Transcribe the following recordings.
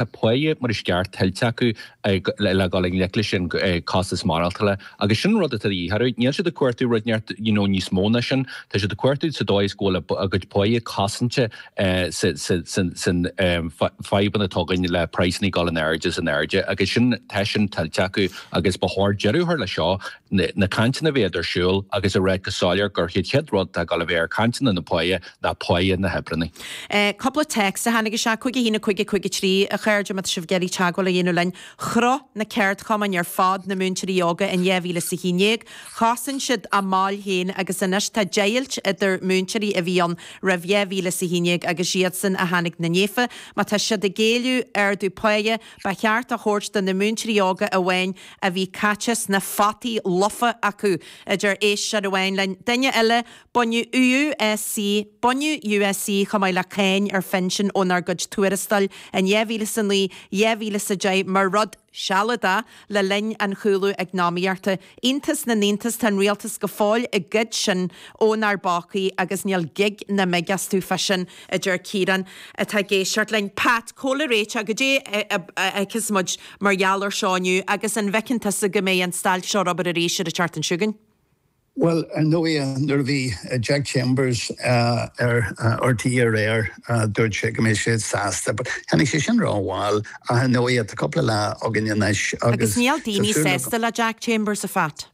a bpáighe mar is ceart, tuillte acu le dhul i ngleic leis an gcostas maireachtála. Agus sin an rud atá de dhíth orthu. Níl siad ag cuartú rud ar bith, you know, níos mó ná sin. Tá siad ag cuartú sa dóigh is go bhfuil a gcuid páighe cosanta san fadhbanna atá againn le praghsanna ag dul in airde is in airde agus sin, tá sin tuillte acu agus ba chóir deireadh a chur leis seo. Na cainteanna a bheith ar siúl agus a rá go soiléir gur chéad chéad rud atá dul a bheith ar cainteanna na páighe ná páí na n-oibreannaí. Cúpla text a tháinig isteach cúig a haon cúig cúig a trí, a chairde, má tá sibh ag iarraidh teagmháil a dhéanamh linn. Chruthaigh na ceardchumainn ar fad na múinteoirí óga in 2011. Chosain siad a mbaill féin agus anois tá deighilt idir múinteoirí a bhí ann roimh 2011 agus iadsan a tháinig ina ndiaidh. Má tá siad ag éileamh ardú páighe, ba cheart a thabhairt do na múinteoirí óga amháin a bhí caite sna fataí lofa acu a deir éisteoir amháin linn, duine eile, Baineadh USC Baineadh USC chomh maith le cáin ar phinsin ónár gcuid tuarastail in dhá mhíle is a naoi, dhá mhíle is a deich mar rud sealadach le linn an chúlú eacnamaíochta. Iontas na n-iontas, tá an rialtas go fóill ag goid sin ónár bpócaí agus níl gig ná mig astu fá sin, a deir Ciarán, atá ag éisteacht linn. Pat, cá mhéad réiteach go dtí a fheiceas muid mar gheall air seo inniu agus an bhfeiceann tusa go mbeidh an stailc seo ar obair arís ar an tseachtain chugainn? Bhuel, ar ndóigh, nuair a bhí Jack Chambers ar RTÉ aréir, dúirt sé go mbeidh sé sásta. But tháinig sé sin rómhall, ach ar ndóigh, tá cúpla lá againn anois agus níl daoine sásta le Jack Chambers, a Phat.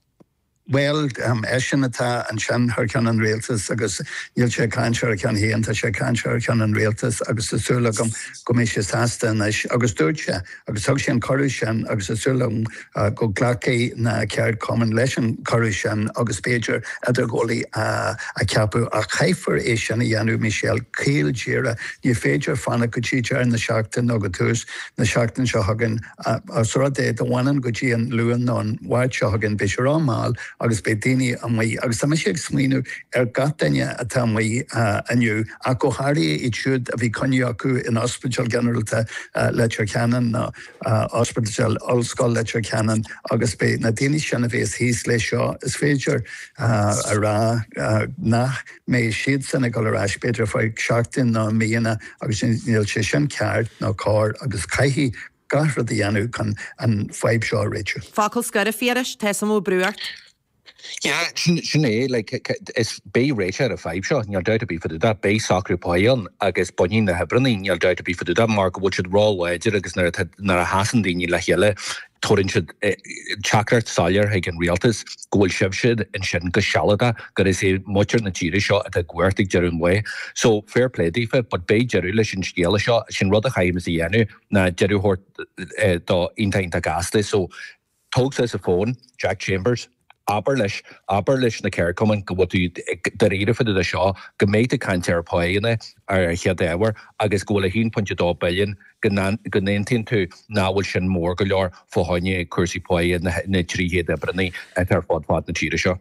Bhuel, eisean atá ansin thar ceann an Rialtais agus níl sé ag caint ar a cheann féin, tá sé ag caint thar ceann an Rialtais agus tá súil agam go mbeidh sé sásta anois. Agus dúirt sé. agus thug sé an cuireadh sin agus tá súil agam go nglacfaidh na ceardchumainn leis an gcuireadh sin agus b'fhéidir idirghabhálaí a cheapadh ach caithfear é sin a dhéanamh Michelle caol díreach, ní féidir fanacht go dtí deireadh na seachtaine nó go tús na seachtaine seo chugainn más rud é go bhfanann go dtí an Luan nó an Mháirt seo chugainn beidh sé ró mall agus beidh daoine amuigh agus tá mise ag smaoineamh ar gach duine atá amuigh inniu. ach go háirithe iad siúd a bhí coinne acu in Ospidéal Ginearálta Leitir Ceanainn nó Ospidéal Ollscoile Leitir Ceanainn agus is iad na daoine sin a bheas thíos leis seo, is féidir a rá, nach mbeidh siadsan ag dul ar ais b'fhéidir ar feadh seachtainí nó míonna agus níl sé sin ceart ná cóir agus caithfidh gach rud a dhéanamh chun an fadhb seo a réitiú. Focal scoir, a Phiarais, tá an t-am ag brú orm. Yeah, sin é, like, is, beidh réiteach ar an fadhb seo, níl doubt ar bith fá dtaobh de, beidh socrú pá ann agus bainfidh na hoibreannaí, níl doubt ar bith fá dtaobh de, mar go bhfuil siad ró-láidir agus nuair atá, nuair a sheasann daoine le chéile, tabhaireann siad teachtaireacht soiléir chuig an rialtas go bhfuil sibhse ansin go sealadach, gur is iad muintir na tíre seo atá i gcumhacht ag deireadh an lae. So, fair play daofa, but beidh deireadh leis an scéala seo, sin rud a chaithfimid a dhéanamh ná deireadh a thabhairt dó, iontach, iontach gasta, so, Tóg suas an fón, Jack Chambers. Abair leis, abair leis na ceardchumainn go bhfuil tú dáiríre fá dtaobh de seo, go mbeidh tú ag caint ar phá aonair ar an chéad ábhar agus go bhfuil 1.2 billiún, go n-aontaíonn tú nach bhfuil sin mór go leor fá choinne cúrsaí páighe na dtrí chéad oibreannaí atá ar fud fad na tíre seo.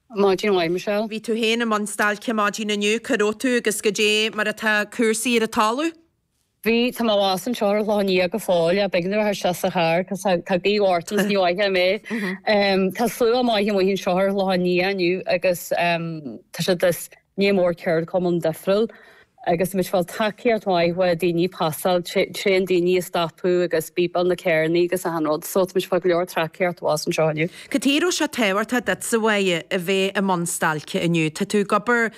Maidin mhaith, Michelle. Bhí tú féin i mbun stailce maidin inniu, cá raibh tú agus cad é mar atá cúrsaí ar an talamh? Bhí, tá mé abhus anseo ar an Chlochán Liath go fóill, b'éigean a bheith anseo sa charr cos tá gaoth mhór ann agus ní mhothófá mé, tá slua maith amuigh anseo ar an Chlochán Liath inniu agus tá siad Ní mór ceardchumainn difriúil agus tá muid ag fáil tacaíocht mhaith ó dhaoine ag pasáil tréan daoine ag stopadh agus ag bípeáil na carrannaí agus achan rud so tá muid ag fáil go leor tacaíocht abhus anseo inniu. Cad chuige a raibh sé tábhachtach duitse a bheith i mbun stailce inniu? Tá tú ag obair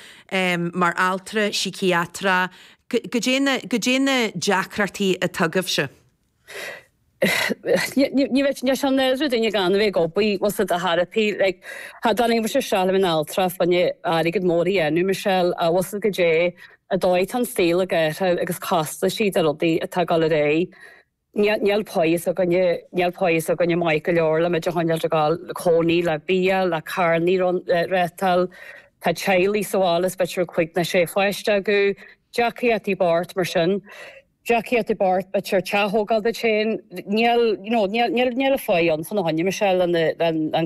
mar altra síciatrach, cad é, cad é na deacrachtaí atá agaibhse? Ní raibh sé i nádúr duine gan a bheith ag obair bhfuil a fhios agat ar chor ar bith like cha dtáinig mise isteach le bheith in altra fá choinne airgead mór a dhéanamh Michelle bhfuil a fhios agat cad é an dóigh atá an saol ag athrú agus costaisí de rudaí atá ag dul ar aghaidh Níl páigh s'againne Níl páigh s'againne maith go leor le muid a choinneáil ag dul le cónaí le bia le carrannaí a reáchtáil tá teaghlaigh sa bhaile is b'fhéidir cúig nó sé pháiste acu deacair áit i bpáirt mar sin. Jaquet i bpáirt na tire, teach thógáil duit féin, níl, you know, níl, níl, níl a phoill ann chun a sheinm is ea le an,